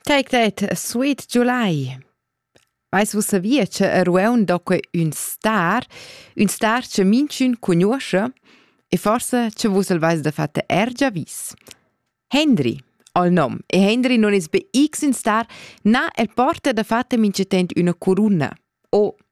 Take that, Sweet July. Vais vus savia che a Rueun doque ün star, ün star che minchün conosce e forse che vus el vais da fatta ergia vis. Henry, al nom, e Henry non es be X in star, na el porta da fatta mince tent üna corunna, o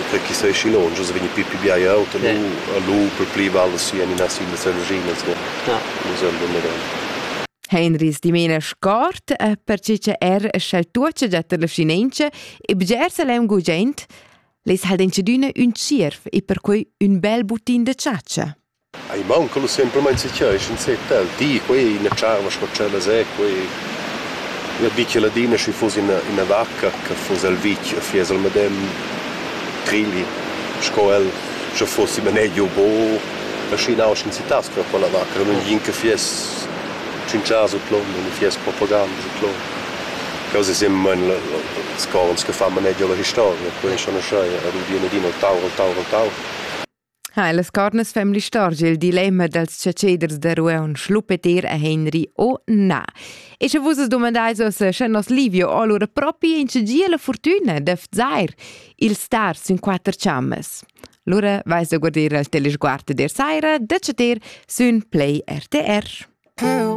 Ute chi sei schi lonsch as vegni pü pü bia aut e lu e lu per pli val si en ina sin las energinas vo. Nus el domedan. Heinrich dimena scort perche cha er sch'el tuocha già tar la vschinentscha e bgersa l'heim gugent, les ha'l denchadüna ün tschierv e perquai ün bel butin da chatscha. Ei maunca lu semplamein setgirg enzatgei e di quei, ina tscharva sco tschellas è quei. Ina bitga ladina schi fuss ina, ina vacca che fuss el vitg e fiess el medem trigli sco el, sche fussi manegiu bu. E schi nausch enzitass quella quella vacca, che mintgin che fiess tschintschas u clom u ni fiess propaganda u clom. Quels ei semplamein ils corns che fan manegiu alla historia, quei ei schon uschè, ad udir ladina el tau, el tau, el tau. Ha las cornas fem l'istorgia il dilemma dals chatscheders da Rueun Schlupeter e Henry o na. E sche vus as domandais oss, sche nos Livio o allura propi in gie la fortuna d'efzair il star sün quatter chammas. Lura vais da guardir al telesguard der saira da chatter sün Play RTR. Hey.